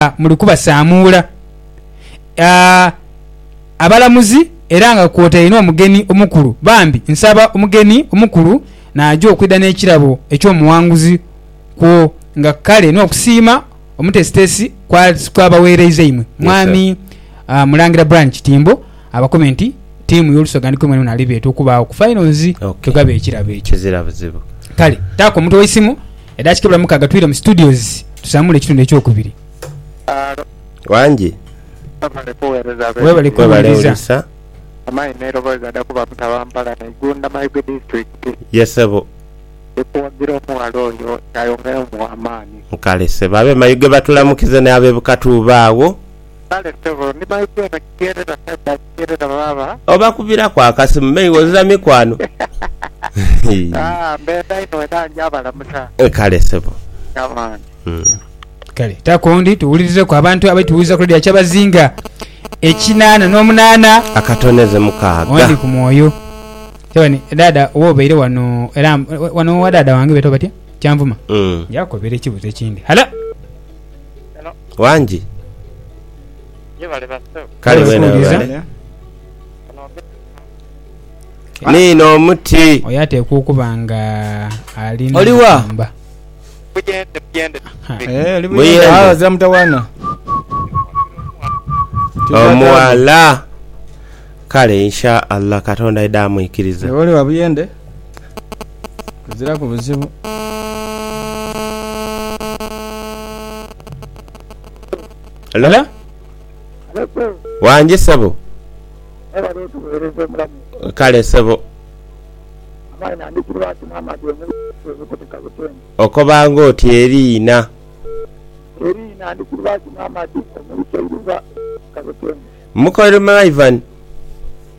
nga muli kubasaamuula abalamuzi era nga kwotaire n'omugeni omukulu. Bambi nsaba omugeni omukulu naaja okwidha n'ekirabo eky'omuwanguzi kwo nga kale n'okusiima omutesitesi kw'abaweereiza imwe, Mwami Mulangira Brian Kitimbo. Abakobe nti ttiimu y'Olusoga ni kwemwena mwena alibeeta okubaagho ku Finals tugabe ekirabo ekyo. Kizira buzibu. Kale taako omutwe w'eisimu, edakika ebula mukaaga twire mu studios tusamuule ekitundu eky'okubiri. Alo. Wangi. Webale kuwereza abe. Webale kuwuliriza. Amayi neroboza ada kuba mutaba mpala na Igunda Mayuge District. Ye sebo. Ndi kuwagira omughala oyo yayongera omuwa amaani. Kale sebo abe Mayuge batulamukize ne abe Bukatuuba agho. Kale sebo ni my dear bakigherera kale bakigherera baaba. Obakubiraku akasimu me iwe ozira mikwano hii. Aah mbenda inho era nja balamusa. Kale sebo. Come on. Kale ta kondi tuwulirizeku abantu abali tuwuliza ku Radio Kyabazinga ekinana nomunana Akatoneze mukaaga. One ku mwoyo. Kyabani dada oba obeire wano era wano wa dada wange betwa batya? Kyanvuma. Njakukobera ekibuzo ekindi. Halo. Wangi. Kale wena webale. Niino omuti. Oyo atekwa okuba nga ali Oli wa? n'omugumba. Eh, oli Muyende. buyende. Ah, ozira mutawana. Omuwala. Kale insha Allah katonda aidhe amwikirize. Oli wa buyende? Kuziraku buzibu. Hello? Wangi sebo. Kale sebo. Okoba nga oti eriina. Mukolimaivan.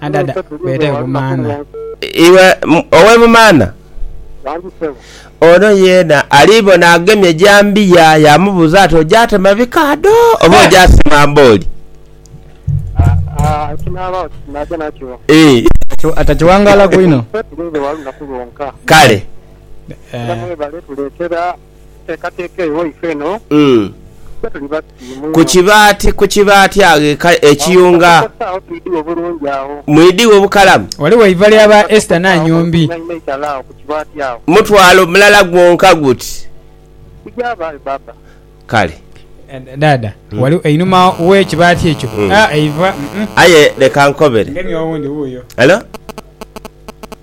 Adada beeta e Bumaana. Iwe ow'e Bumaana? Ono yeena ali bona agemye jambiya yaamubuuza ati, Ogyatema bikaadho oba ogyasima mbooli? Ii. Atakiwangaalaku inho. Kale. Ku kibaati, ku kibaati agho e Ka, e Kiyunga. Mwidhi wo bukalamu. Ghaligho eiva lya ba Esther Nanyombi. Mutwalo mulala gwonka guti. Kale. Dhaadha, ghali einhuma we kibaati ekyo. Eiva, umm. Aye leka nkobere. Hello.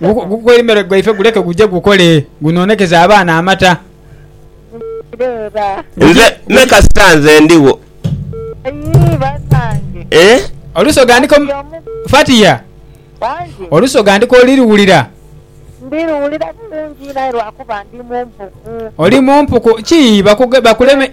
Gukoimere gwaife guleke guje gukole gunoonekeze abaana amata. Nze me kasita nze ndigho. Olusoga ndiko Fatia olusoga ndiko oli luwulira. Ndi luwulira bulungi aye lwakuba ndi mumpuku. Oli mumpuku ki bakuleme.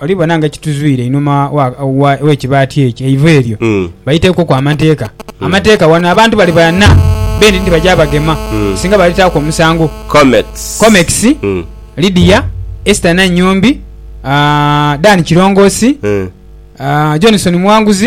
oli bona nga ekituzwire inhuma w'ekibaati ekyo, eiva eryo, baiteekwoku amateeka. Amateeka wano abantu bali bana beene nti baja bagema singa balitaaku omusango. Comex, Lydia, Esther Nannyombi, Dan Kirongoosi, Johnson Muwanguzi.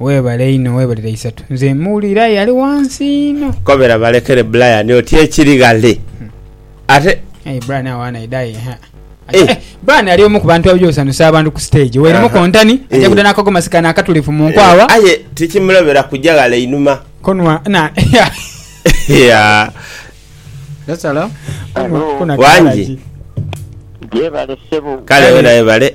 Weebale inho, weebale dha isatu. Nze muwulira aye ali wansi inho. Kobera balekere Brian oti ekiri ghale ate. Aye Brian awaana aidha aye ha. Eh. Eh, Brian ali omu ku bantu abaja osanhusa abantu ku stage. Weeremu Aha. kontani, aja Eh. kuda n'akagomasi kano akatulifu mu nkwagha. Eh, aye tikimulobera kuja ghale inhuma. Konwa na Yeah. That's hello. Konwa- Konwa Wangi. kalagi. Yebale ssebo. Kale wena webale.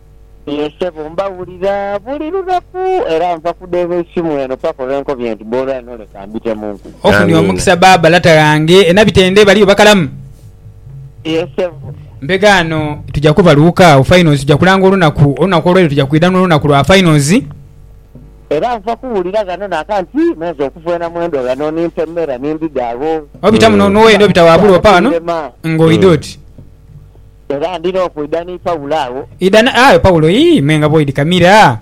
Ye ssebo, mbawulira buli lunaku, era nva kudheeba eisimu eno paka olwe nkobye nti bwolwa ino leka mbitemunku. Ofunye omukisa baaba lata ghange e Nabitende baliyo bakalamu? Ye ssebo. Mbega ano tuja kubaluuka agho finals tuja kulanga olunaku, olunaku olweiro tuja kwidha n'olunaku lwa finals. Era nva kuwulira ghano naka nti menze okuvwena mwendo ghano ni ntemera ni ndidha agho. Obita muno n'owoyenda obita waabula opa ghano nga oidha oti. Era ndina okwidha ni Paulo agho. Idha na, aye Paulo, Ii, me nga bw'oidhikamira.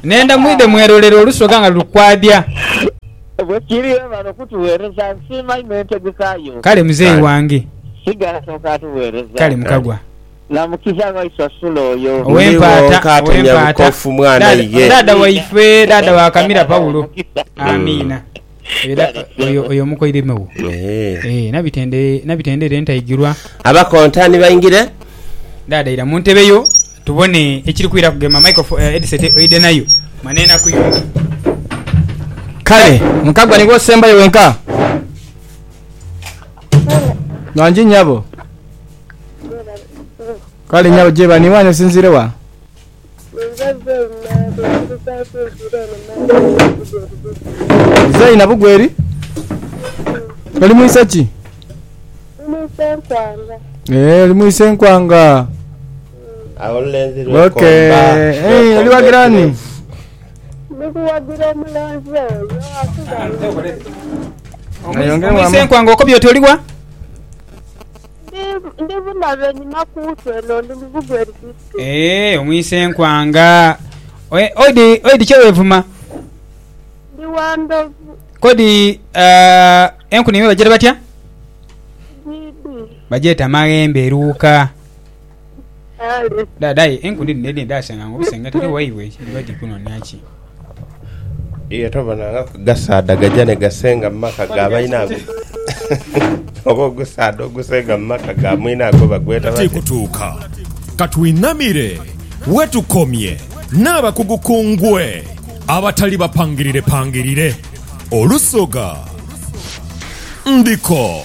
Nenda mwidhe mwerolere olusoga nga luli kwadhya. Bwe kiri, webale okutugheereza. Nsiima inho entegeka yo. Kale muzeeyi wange. Sigala kyonka atugheereza. Kale mukagwa. Na mukiza waisu asula oyo. Ow'empaata, ow'empaata. Dha, dha, dha waife, dha, dha wa kamira Paulo. Amiina. Era oyo, oyo mukoireme wo. Eeh. Eeh, nabitende, nabitende ere ntaigirwa. Aba kontani baingire. Dhaadha ira mu ntebe yo tubone ekiri kwira kugema micro, headset oidhe nayo. Mani enaku yo. Kale, Mukagwa nigwe osembayo wenka? Ghangi nyabo. Kale nyabo, gyebani wanyu osinziire wa? Zaina Bugweri oli mwise ki? Eeh oli mwise nkwanga. Awo olulenzi Okay. lwekomba. Eh, oli wagira ani? Ayongere Mwise wamu. nkwanga okobye oti oliwa? Ndi bunabe enhima ku nsi eno, ndi mu bugwe eri Kristo. Eeh omwise nkwanga. Odi odi kye wevuma? Ndi wa ndhovu. Kodi eh, enkuni embi bagyeta batya? Gidi. Bagyeta maghembe eruuka. Kale. Dad, aye enkuni dhino edhindi dhasanga nga obusenge tali waibwe ki? Dhiba dhiri kunoonia ki? Iye tobonaangaku gasaadha gaja ni gasenga mu maka ga bainaago? Oba ogusaadha ogusenga mu maka ga mwinaagwo bagweta batya? Tikutuuka. Ka twinamire we tukomye n'abakugu ku ngwe abatali bapangirirepangirire. Olusoga. Ndiko.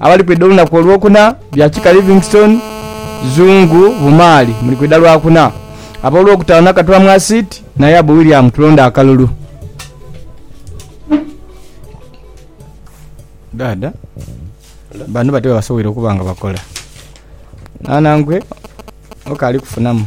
Abali kwidha olunaku olwokuna, bya kika Livingstone, Zungu, Bumaali muli kwidha lwakuna. Ab'olwokutaano Nakatwa Mwasiiti, Nayabu William Tulonde Akalulu. Dhaadha bano batyo bwebasoboire okuba nga bakola. Naana ngwe okaali kufunamu.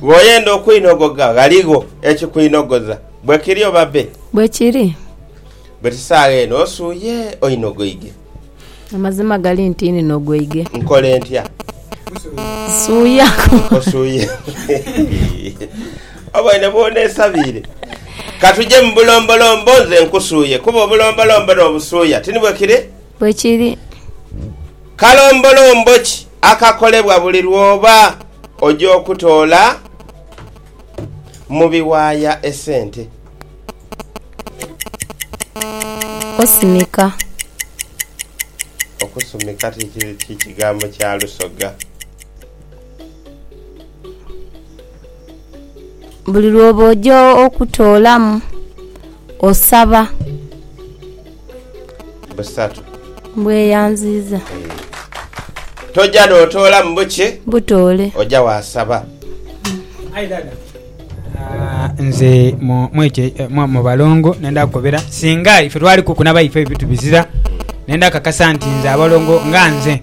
Bw'oyenda okwinogoga, ghaligho ekikwinogoza. Bwe kiri oba be? Bwe kiri. But saagha eno osuuye oinogoige. Amazima gali nti ninogoige. Nkole ntya? Suuya. Osuuye. Oboine bw'oneesabiire? Ka tuje mu bulombolombo nze nkusuuye, kuba obulombolombo n'obusuuya ti ni bwe kiri? Bwe kiri. Kalombolombo ki? akakolebwa buli lw'oba oja okutoola mu biwaaya esente. Okusumika. Okusumika ti kigambo kya lusoga. Buli lw'oba oja okutoolamu, osaba. busatu. Mbweyanziiza. Toja notoolamu bukye. Butoole. Oja wasaba. Aye dada. Nze mu balongo nenda kukobera singa ife twali kukuna baife ebitu bizira nenda kakasa nti nze abalongo nga nze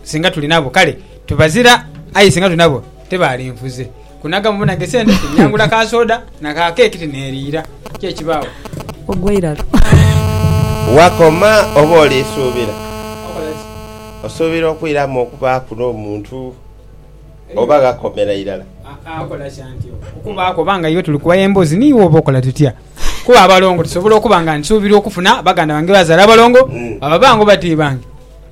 singa tuli nabo kale tubazira aye singa tuli nabo tebalinfuze Kunaga mu bunage sente ti nnyangula ka soda na ka keeki ti neeriira. Kiki ekibaawo? Ogwa irala. Wakoma oba oli suubira? Okola ki? Osuubira okwiramu okubaaku n'omuntu oba ghakomera irala? Aa, okola ki anti oba okubaaku oba nga iwe tuli kuwaya emboozi ni iwe oba okola tutya? Kuba abalongo tusobola okuba nga nsuubira okufuna baganda bange bazaala abalongo, baba bange oba ti bange.